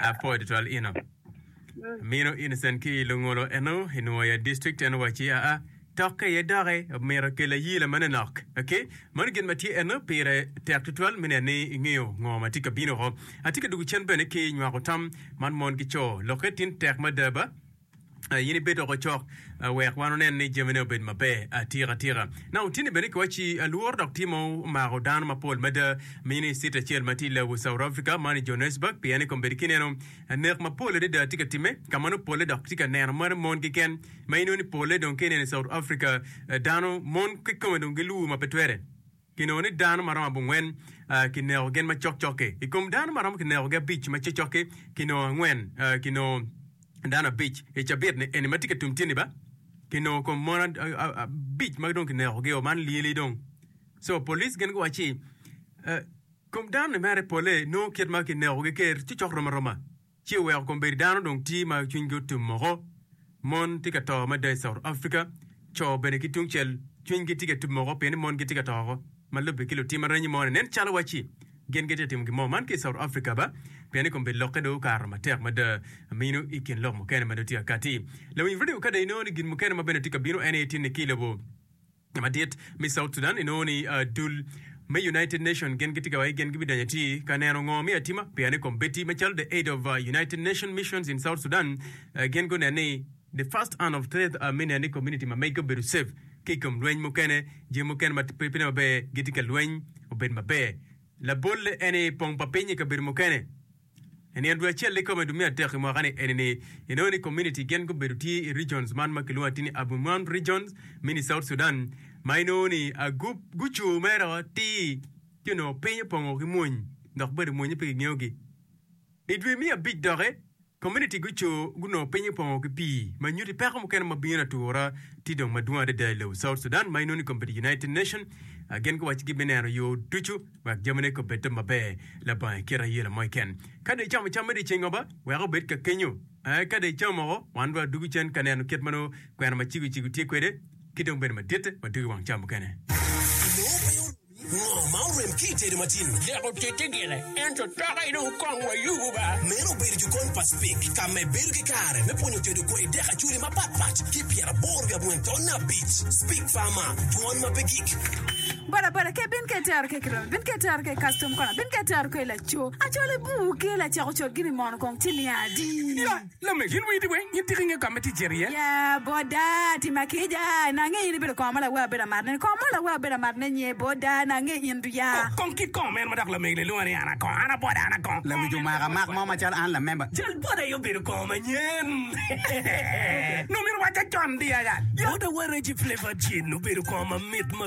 Apoyo tutwal ino mino Innocent ki i Lungolo eno i Nwo Yat District eno wacci aa tokke iye doki omito kela yii lamane nok ok mano gin ma tye eno pire tek tutwal me neno ni ingeyo ngo ma tye ka bino woko. Atye ka dwogo cen bene ki nywako tam man mon ki co lokke tin tek mada ba. in ibed dok ocok wek wan wunen ni jamine obed maber atika tika. Now, tini bene kiwaci alworo dok timo mako dano mapol mada ma in i city acel ma tye i Lagos, South Africa, man i Johannesburg, pien i kombedi kineno nek mapol adada tye ka time ka ma nongo pole dok tye ka neno mere mon keken ma ineno ni pole dong ka ineno i South Africa dano mon kikome dong giluwu ma pe twere. Kinongo ni dano ma romo abongwen kineko gin ma cokcok-ki. I kom dano ma romo kinekogi abic ma cokcok-ki, kinongo angwen kinongo dano abic i cabit-ni eni ma tye ka tum tyeni ba? Kinongo kom mon abic ma dong kinekogi-o, man lyeli dong. Co police gin guwaco ci, Kom dano-ni mere pole nongo kit ma kinekogi ker cokcok rom aroma. ci oweko kombeddi dano dong tye ma cwinygi otum moko. Mon tye ka to mada i South Africa, co bene ki tungcel cwinygi tye ka tum moko pien ni mon gitye ka to woko. Ma lubbe ki lutim aranyi moni, nen calo wacci gin gitye ka timo gin mo man ki i South Africa ba, pien ni kombeddi lokke dong okato matek mada mino i kin lok mukene ma dong tye ka katti. Lawiny redio kadi inongo ni gin mukene ma bene tye ka bino en aye tye ni ki i lobo. Ka madit me South Sudan inongo ni dul me United Nations gin gitye ka wayi gin gibidanyo atir ka neno ngo me atima pien i kombeddi macalo the aid of United Nations missions in South Sudan gin gunen ni the first and of third me nen ni community ma mege obedo safe ki ikom lweny mukene jami mukene ma pe ne maber gitye ka lweny obed maber labolle en ni pong pa piny ikabedo mukene I nino dwe acel ikome dwe me adek i mwaka ni eni-ni, inongo ni community gen gubedo tye i regions man ma kilwongo ati ni Abuimuan region mini South Sudan ma inongo ni agup gucu mere atir ci onongo piny opongo ki mwony dok bade mwonye pe kingeyo gi. I dwe me abic doki, community gucu gunongo piny opongo ki pii ma nyuti peko mukene ma bino atura tye dong madwong adada i lobo South Sudan ma inongo ni community United Nation gen guwaci gibineno yo ducu wek jamine kong bed te maber labongo i kite aye lamoc ken. Ka dong icamo cam me dyeceng oba, wek obed ka kenyo. Ee, ka dong icamo woko, wan dong adwogo cen ka neno kit ma nongo kwena ma cego cego tye kwede, ki dong bedo madit ma dwogo i wang cam mukene. Nongo pe oremi ngo ma orem ki i tedo matin. Lik otiti gire, ento toke dong kong wa yubu ba. Meno obedo jokon pa Speke ka me bedo ki kare me pwonyo tedo kwai dek acholi mapat pat ki pyeraboro wiabweng taun abic. Speke Farmer, dwon ma pe gik. Bodaboda ke bin ke tero ke kiromi bin ke tero ke kastom kona bin ke tero ke laco acol i bur ke lacako cot gini mono kong ci niya adi. Ya lame gin witi weng gin tiki nge kame ti jer iye. Ya boda ti makija na nge in ibedo kong ma lawe abedo amat ne kong mo lawe abedo amat ne nye boda na nge in du ya. Oh kong kit kong meno ma dok lamegi le lwongo ni ana kong ana boda ana kong. Lawic omaka mak mo macalo an lamemba. Jal boda aye obedo kong manyen nongo myero waca con di aya. Boda wa Reggie Flavour Gin obedo kong mamit ma.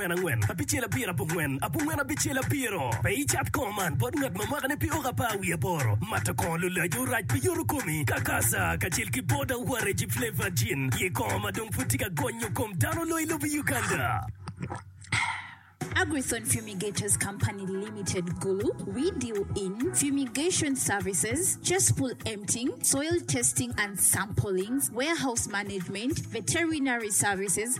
abongwen angwen abicel abiro abongwen abongwen abicel abiro pe icat kor man bot ngat ma mwakane pi oko apar wiye aboro mato kor lulac orac pi yoto komi kakasa kacel ki boda waregi flavored gin ye kor ma dong pud tye ka gonyo kom dano loyo ilobo Uganda. Agri-Thorn Fumigators Company Limited Gulu We deal in fumigation services, cesspool emptying, soil testing and samplings, warehouse management, veterinary services,